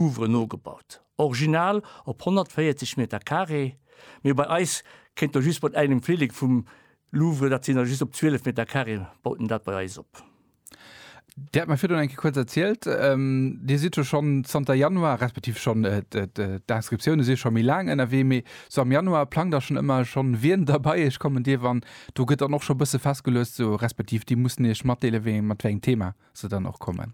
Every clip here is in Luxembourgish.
Ouvre nogebaut. Original op 140 Meter Carré, mee bei eis kéint der just mat engem Flillek vum Louvre, dat sinn der just op 12 Meter Carré, baut en dat bei eis op. Dir hat mer virdrun eng Kéier kuerz erzielt, Dir sidd jo schonn zanter Januar, respektiv schonn, d'Inscriptioune si scho méi laang ënnerwee, mee sou am Januar plangt der schonn ëmmer schonn, wien da bei Iech kommen dierf an do gëtt dann och scho bësse festgeluecht, sou respektiv Dir musst Iech matdeele wéi mat wéi engem Thema. se dann och kommen?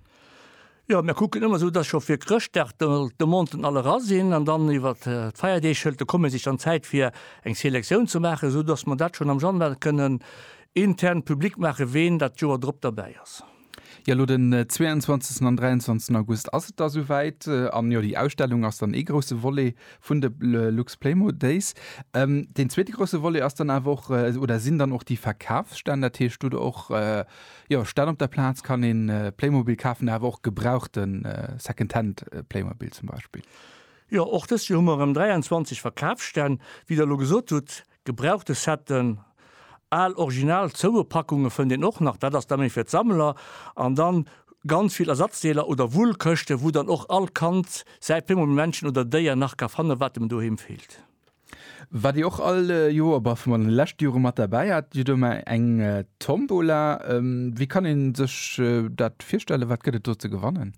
Jo, mir kucken ëmmer esou, dass scho fir Chrëschtdag de Monten all era sinn an dann iwwer d'Feierdeeg hëlt de Comité sech dann Zäit fir eng Selektioun ze maachen, esou dass mer dat schonn am Januar kënnen intern public maachen, ween dat d'Joer drop derbäi ass. Jo, elo den 22 an 23 August ass et da souwäit. An jo, déi Ausstellung ass dann ee grousse Volet vun de Luxplaymo Days. Deen zweete grousse Volet ass dann awer och oder sinn dann och déi Verkafsstänn. Dat heescht, do hutt Der och Jo, statt op der Plaatz kann een Playmobil kaafen, awer och gebrauchten Secondhand Playmobil zum Beispill. Jo, och dëst Joer hu mer erëm 23 Verkaafsstänn. Wéi der elo gesot hutt, gebrauchte Setten, al original Zouepackunge fënnt een och nach, dat ass da méi fir d'Sammler, an dann ganz vill Ersatzdeeler oder Wullkëschte wou dann och all Kand säi Playmobil-Männchen oder Déier nach ka fannen, wat em doheem feelt. Waat dir och all Joer, bah vun den leschten Joeren mat derbäi haat, dir huet ëmmer eng Tombola. Wéi kann een sech daat virstellen? Waat gëtt et do ze gewannen?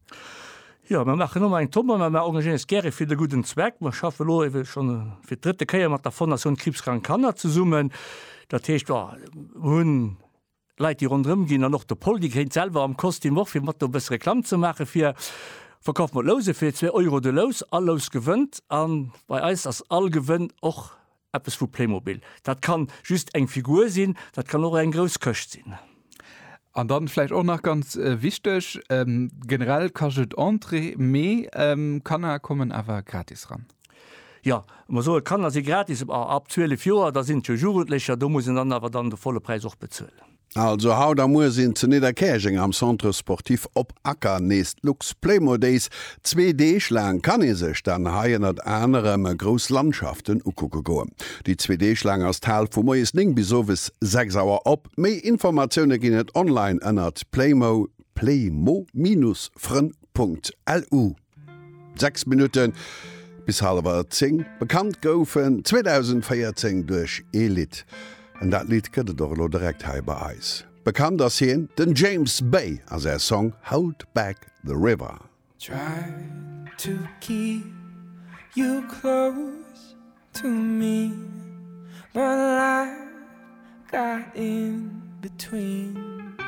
Jo, mer maachen ëmmer eng Tombola. Mer engagéieren eis gäre fir de gudden Zweck. Mer schaffen elo ewell schon fir d'drëtte Kéier mat der Fondation Kriibskrank Kanner zesummen. Daat heescht, jo, mer hunn Leit déi ronderëm ginn an och de Pol déi gréint selwer am Kostüm och fir mat do e bësse Reklamm ze maache fir Verkauf mat Louse fir zwee Euro de Lous. All Lous gewënnt a bei eis ass all Gewënn och eppes vu Playmobil. Dat ka just eng Figur sinn, dat kann och eng grouss Këscht sinn. An da vläicht och nach ganz wichteg, generell kascht et Entrée, mee Kanner kommen awer gratis ran. Jo, mer soen, d'Kanner si gratis, ma ab 12 Joer, da sinn et jo Jugendlecher, do muss een dann awer dann de volle Präis och bezuelen. Also haut a muer sinn zu Nidderkäerjeng am Centre Sportif Op Acker nees d'Lux Playmo Days. Zwee Deeg laang kann ee sech dann hei ënnert anerem grouss Landschaften ukucke goen. Déi zwee Deeg laang ass d'Hal vu moies 9 bis owes 6 Auer op. Méi Informatioune ginn et online ënnert playmo-frënn.lu. Sechs Minutten bis halewer zéng. Bekannt gouf en 2014 duerch ee Lidd. An dat Lidd gëtt et och elo direkt hei bei eis. Bekannt ass hien, den James Bay a säi Song Hold Back the River. Tried to keep you close to me But life got in between